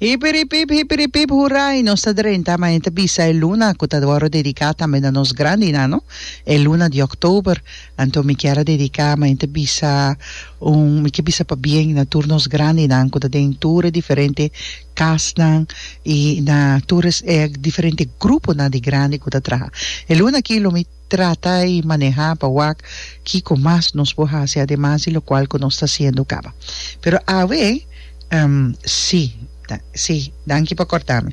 Hipiripip, hipiripip, hurai! Nos ta drenta ma e ta bisa e luna cu ta worde dedica tambe na nos grandi y nano, e luna di Oktober. Anto mi kier a dedica ma e ta bisa un, mi ke bisa pa bien na tur nos grandinan cu ta den tur e diferente casnan y na tur e diferente gruponan di grandi cu ta traha. E luna aki lo mi. Trata y maneha pa wak kico mas nos por haci ademas di locual cu nos ta haciendo caba. Pero awe, ehm, si, si, danki pa cortami.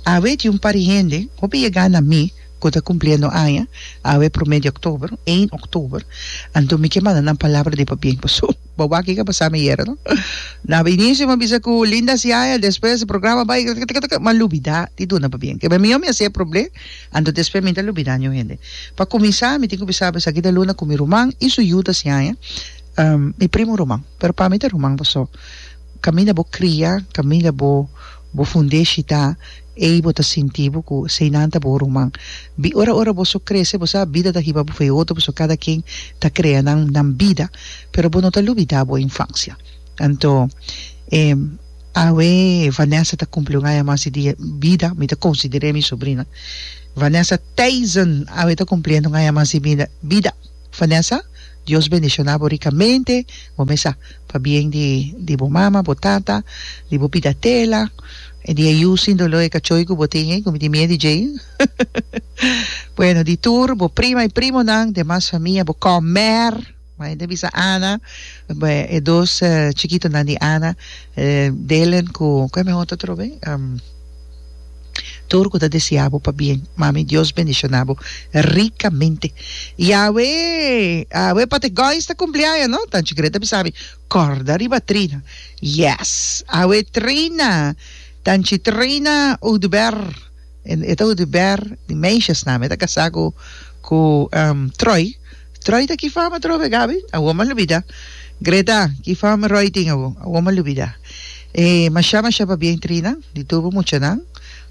Awe tin un pari hende, hopi yega na mi, cu ta cumpliendo aña, awe prome di october, eén october, anto mi ke manda nan palabra di pa bien, paso bo wak kico a pasa mi yera no. Na inicio mi a bisa cu linda siaya, despues programa bay, ma lubida di duna pa bien, ke mi a bisa mi a hacer proble. Anto despues mi ta lubidá ño hende. Pa kuminsá mi tin ku bisa esaki ta Luna ku mi ruman i su yu ta siñaña mi primu ruman, pero pa mi ta ruman pasó kaminda bo kria, kaminda bo bo fund'é shitá ei bo ta sinti bo ku esei nan ta bo ruman. Bi ora ora bo so krese bo sa bida ta hiba bo for e otro pasó kada ken ta krea nan nan bida, pero bo no ta lubidá bo infansia. Anto e. Awe Vanessa ta kumpli un aña mas di dia bida, mi ta konsider'é mi subrina. Vanessa Theisen awe ta kumpliendo un aña mas di bida bida. Vanessa, Dios bendishoná bo rikamente, bo mesa pa bien di di bo mama, bo tata, di bo bida tela, e di e yu sin doló, e kachoi ku bo tin ei, ku mi tin miedu di djei, bueno, di tur bo prima i primonan, demas famia, bo kòmèr. Ma e ta bisa Ana, e dos chikitonan di Ana, Delen ku ku e men otro atrobe? Tur ku ta deseá bo pa bien. Mami Dios bendishoná bo rikamente. I awe, awe Pati Gois ta kumpleaña, no? Tanchi Gret a bisa mi, Kòrda riba Trina. Yes! Awe Trina, Tanchi Trina Oudubert. E ta di Ber, di meishasnan. E ta kasá ku ku Troy. Troy ta ki fama trobe, Gabi? Awor m'a lubidá. Greta, ki fama Roy tin awor? Awor m'a lubidá. E mashá mashá pabia intrina di tur bo muchanan,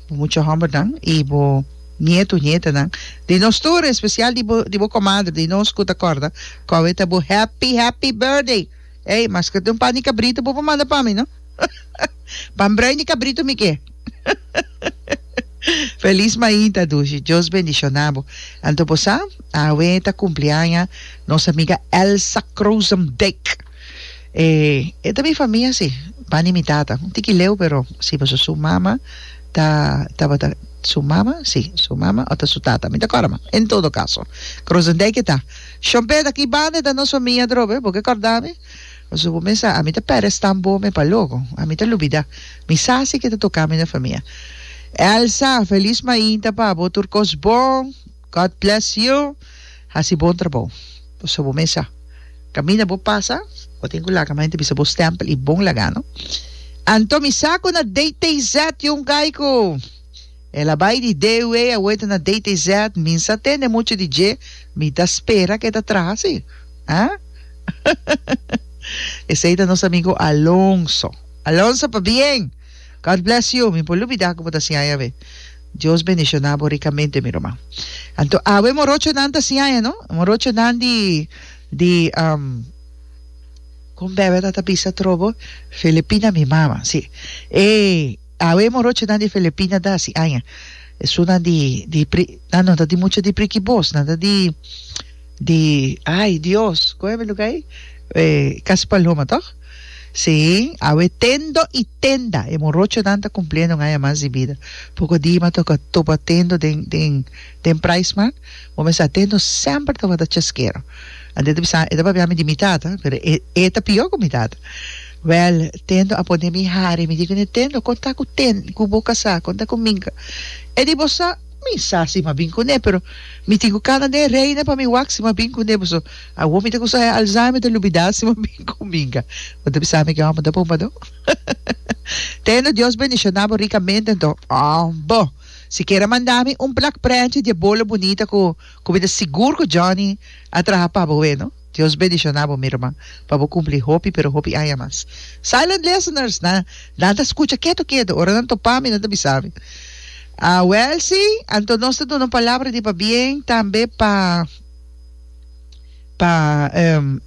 bo mucha hòmbernan i bo nietu, nietanan. Di nos tur, espesial di bo di bo komadre, di nos ku ta kòrda kòbe ta bo. Happy, happy birthday! Ey, maske ta un par di kabritu bo por manda pa mi, no? Pan brei di cabrito mi ke. Feliz mainta dushi Dios bendicionabo anto bo sa awe ta cumpliaña nos amiga Elsa Crozendijk e e ta mi famia si bani mi tata un tiki leu pero si paso su mama ta tabata su mama si su mama o ta su tata mi ta cora mas en todo caso Crozendijk e ta Schonpet aki banda e ta nos famia drobe bo ke corda mi Pasobra bo mester, ami ta perde stamp bo me pa loco. Ami ta lubida. Mi sa si ke ta toca mi na famia. Elsa, Feliz mainta pa bo, tur cos bon. God bless you. Haci bon trabao. Pasobra bo mester, caminda bo pasa, bo tin cu laga mainta bisa bo stempel y bon laga no. Anto, mi sa cu na DTZ, Jongaico. El a bai di DUA a weta na DTZ, mi n'sa tende mucha di dje, mi ta spera cu e ta traha si. Ahh. Esey ta nos amigo Alonso. Alonso pabien! God bless you! Mi por lubida cu bo ta siaña awe. Dios bendiciona bo ricamente mi ruman. Anto awe e morochonan ta siaña no? E morochonan di di um con bebe a ta bisa trobo? Filipina mi mama, si. Ey! Awe morochinan di Filipina ta hasi aña. Esunnan di di pri nan no ta di mucha di prikibos, nan ta di di ai Dios kon e mi luga ei? E Kas Paloma tòg? Sí, awe tendo i tenda e morochonan ta kumpliendo un aña mas di bida. Poko di m'a toka topa tendo den den den prais man, bo mester sa tendo semper tabata cheskero. Anto e ta bisa e ta papia mi di mi tata, pero e e ta pior ku mi tata. Wèl, tendo a pone mi hari, mi di ku Nintendo, Kon ta ku ten, ku bo kasá? Kon ta ku Minka? E di, Bo sa, mi sa si m'a bin kuné, pero mi tin ku kana den reina pa mi wak si m'a bin kuné. Bo so, awor mi ta ku sa e Alzheimer, mi ta lubidá si m'a bin ku Minka. Bo ta bisa mi ke hòmber ta bumbadó? Tendo Dios bendishoná bo rikamente, anto ambo sikiera manda mi un plak prèntje di e bolo bunita ku ku mi ta sigur ku Johnny a traha pa bo, weno. Dios bendiciona bo mi ruman pa bo cumpli hopi pero hopi aña mas silent listeners na nan ta scucha keto keto ora nan topa mi nan ta bisa mi a wel si anto nos ta duna un palabra di pabien tambe pa pa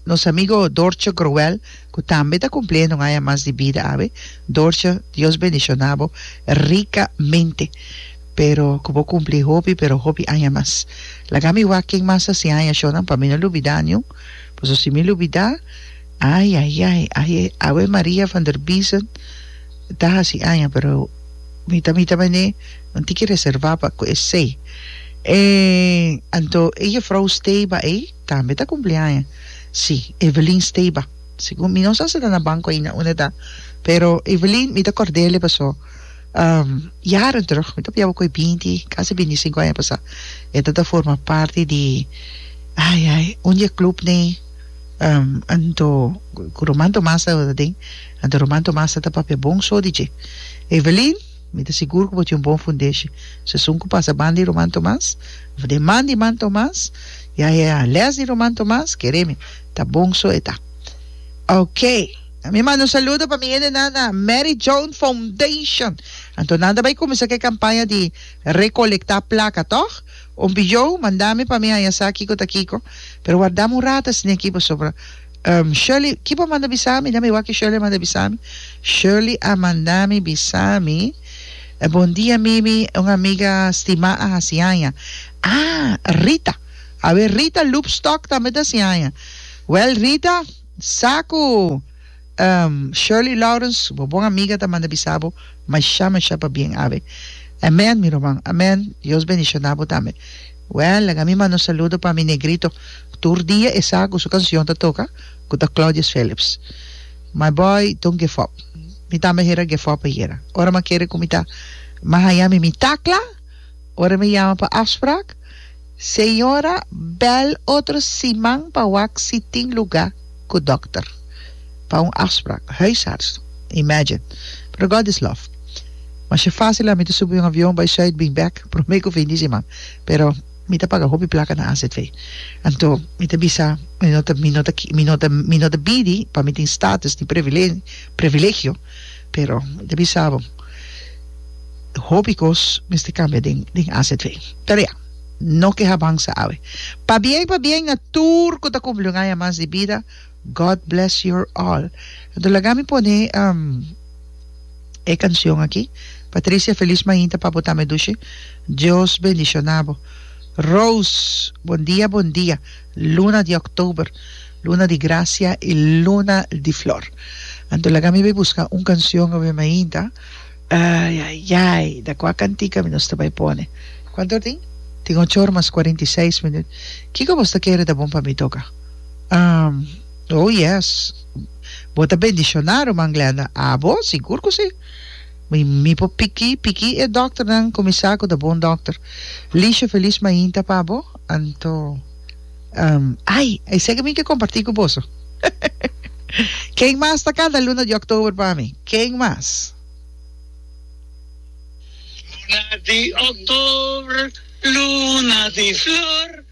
nos amigo Dortje Groel cu tambe ta cumpliendo un aña mas di bida awe Dortje Dios bendiciona bo ricamente. Pero cu bo cumpli hopi pero hopi aña mas. Laga mi wak ken mas a si aña shonan pa mi no lubida niun, paso si mi lubida, ai ai ai ai awe Maria van der Biesen ta hasi aña pero mi ta mi ta mende un tiki reserva pa cu esey. E anto e juffrouw Steyba ey tambe ta cumpli aña, si Evelyn Steyba, segun mi no sa si ta na banco aina unda ta pero Evelyn mi ta cordele paso. Jaren terug, mi ta pia bo ku e binti, kasi binti i sinku aña pasá, e ta ta forma parti di, ai, ai, un di e klub nei, anto ku Roman Tomas tabata aden, anto Roman Tomas ta ta papia bon so di dje. Evelin, mi ta sigur ku bo tin un bon fundeshi. Sesun ku pasa banda di Roman Tomas, of den man di man Tomas, ya, ya, ya, lès di Roman Tomas, keremi, ta bon so e ta. Oké! A mi manda un saludo pa mi hendenan na Mary Joan Foundation. Anto nan ta bai kuminsá ku e kampaña di rekolektá plaka, tòg? Un bijou, manda mi pa mi haña sa kiko ta kiko. Pero warda mi un rata esei aki pasobra ehm Shirley, kico a manda bisa mi? Déjame wak ke Shirley a manda bisa mi. Shirley a manda mi bisa mi, Bondia Mimi, un amiga stimá a hasi haña. Ah, Rita. Awe Rita Loopstock tambe ta hasi haña. Wèl Rita. Sa ku Shirley Lawrence, bo bon amiga ta manda bisa bo masha masha pabien awe. Amen mi ruman. Amen Dios bendiciona bo tambe. Well laga mi manda un saludo pa mi negrito ku tur dia e sa ku su kancion ta toka ku ta Claudius Phillips. My boy don't give up. Mi tambe a hera give up ayera. Ora mi a kere ku mi ta mas haña mi mi takla, ora mi a yama pa afsprak, Señora bel otro siman pa wak si tin luga ku dokter pa un afsprak, huisarts, imagine. Pero God is love. Masha fasil ami ta subi un avion bai Zuid bin bek prome ku fini siman, pero mi ta paga hopi plaka na azv. Anto mi ta bisa mi no ta mi no ta mi no ta mi no ta bidi pa mi tin status ni previlegio. Pero ta bisa bo, hopi kos mester kambia den den azv. Ta bia, no ke habansa awe. Pabien pabien na tur ku ta kumpli un aña mas di bida, God bless your all. Anto laga mi pone e kansion aki, Patricia felis mainta pa bo tambe Dushi, Dios bendishona bo. Rose, Bon dia bon dia. Luna di October, Luna di Gracia y Luna di Flor. Anto laga mi bai busca un cancion awe mainta. Ay ay ay da cua cantica mi nos ta bai pone? Cuanto or tin? Tin ocho or mas cuarenta y seis minut. Kico bos ta kere ta bon pa mi toca? Ahm, Oh yes! Bo ta bendicionado man Glenda? Abo, sigur cu si! Mi mi por piki piki e dokternan ku mi sa ku ta bon dokter. Lisha Feliz Mainta pa bo, anto ehm ai esei ke mi ke kompartí ku boso. Ken mas ta kanta luna di òktober pa mi? Ken mas? Luna di òktober, luna di flor.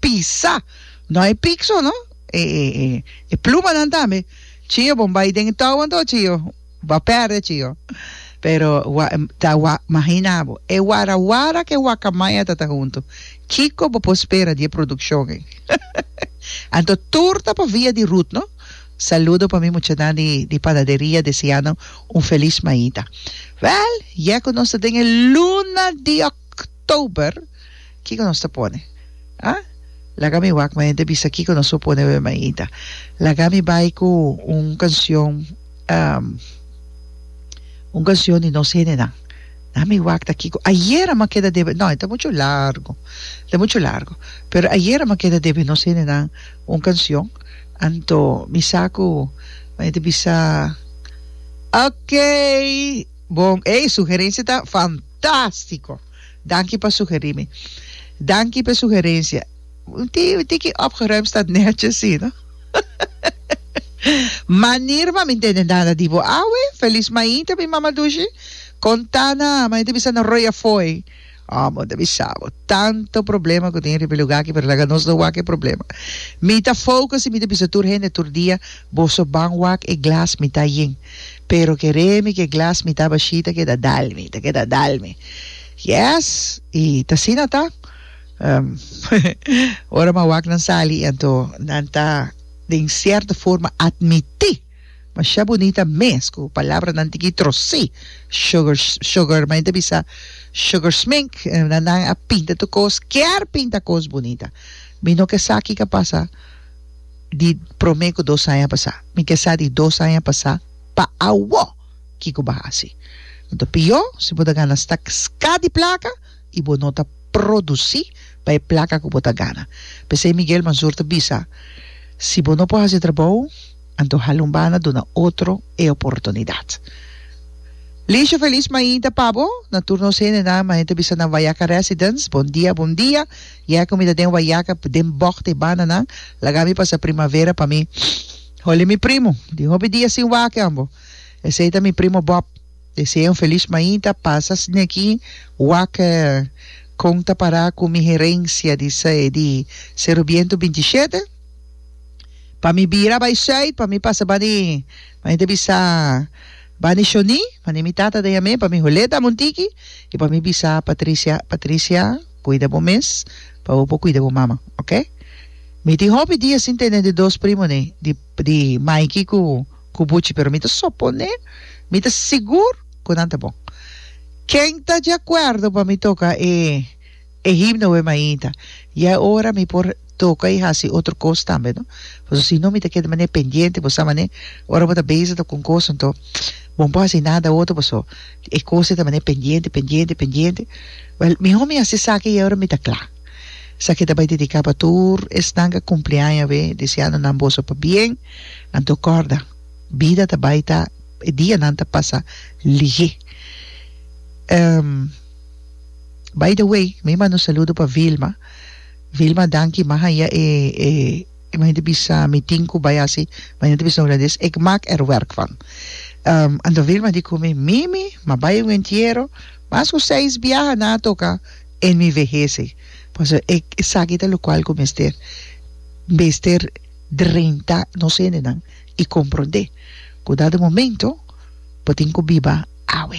pisa no hay picso no e e e e plumanan tambe chio bon bay den touwan to chio ba perde chio pero wa ta wa mahina bo e wara wara ke wakamaya ta ta hunto kico bo por spera di e produccion ei anto tur ta pa via di Ruth no saludo pa mi muchanan di di panaderia deseando un feliz maita wel yeko nos ta den e luna di october Kiko nos ta pone? Ah? Laga mi wak ma hende bisa kiko nos por pone Ave Maita. Laga mi bai ku un kanshon, un kanshon di nos hendenan. Laga mi wak ta kiko. Ayera mi a keda debe, no, e ta muchu largu, e ta muchu largu. Pero ayera mi a keda debe nos hendenan un kanshon, anto mi sa ku mi hende bisa, Okey! Bon, ey, sugerensia ta fantastiko! Danki pa sugeri mi. Danki p'e sugerencia. Un ti un tiki opgeruimd stat netjes si no. Manir mami ntende nada di bo awe. Feliz mainta mi mama dushi. Konta na mami ta bisa na roi afoi. Oh bo ta bisa bo tanto problema ku tin riba e luga aki pero laga nos no wak e problema. Mi ta focus i mi ta bisa tur hende tur dia bo so ban wak e glas mi ta yin. Pero keremi ke glas mi taba shi ta keda dalmi, ta keda dalmi. Yes, i t'asina ta. Um, ora mawaknan sali anto nan ta den sierta forma atmiti masha bunita mes ku palabranan tiki trosi sugar sugar mai ta bisa sugar smink na nan a pinta tu kos kier pinta kos bunita mi no ke sa kika pasa di prome ku dos aña pasá mi ke sa di dos aña pasá pa awo kiko bo a hasi lo ta pió si bo ta gana stak ska di plaka i bo no ta produsí pa e plaka ku bo ta gana p'esei Miguel Mazur ta bisa si bo no por hasi e trabou anto hala un banda duna otro e oportunidat Liesje Feliz mainta pa bo na tur nos hende nan mainta bisa na Wayaca Residence bon dia bon dia. Ya cu mi ta den wayaca den bog te bananan, laga mi pasa primavera pa mi. Holi mi primo, di hopi dia sin wak ambo. Esey ta mi primo Bob. Desea un feliz mainta, pasa sneki wak con ta para cu mi herencia di di Cerro Biento binti i shete. Pa mi bira bay zuid, pa mi pasa bani, mane ta bisa bani Shoni, mane mi tata ta yam'e pa mi Holeta Montiki y pa mi bisa Patricia, Patricia. Cuida bo mes pa bo por cuida bo mama, ok? Mi tin hopi dia sin tene di dos primonan, di di Mikey cu cu Buchi, pero mi ta sopone, mi ta sigur cu nan ta bon. Ken ta di acuerdo pa mi toca e e himno Wemainta? Ya e ora mi por. toka i hasi otro kos tambe no pasobra si no mi ta keda manera pendiente bo sa manera ora bo ta bezi ta con kos anto bo por hasi nada otro paso e kos ta manera pendiente pendiente pendiente well mihor mi hasi esaki y awoor mi ta cla sa ki ta bay dedica pa tur esnan ke a cumpli aña awe deseando nan boso pa bien anto corda bida ta bay ta e dianan ta pasa lihe by the way mi manda un saludo pa Vilma. Vilma danki ma haya e e mane ta bisa mi tin cu bay haci mane ta bisa un rades ik mak er werk van anto Vilma di cu mi mimi ma bay un entiero mas cu seis biaha na toca en mi vehese pasobra ik esaki ta locual cu mester mester drenta nos hendenan y comprende cu dado momento bo tin cu biba awe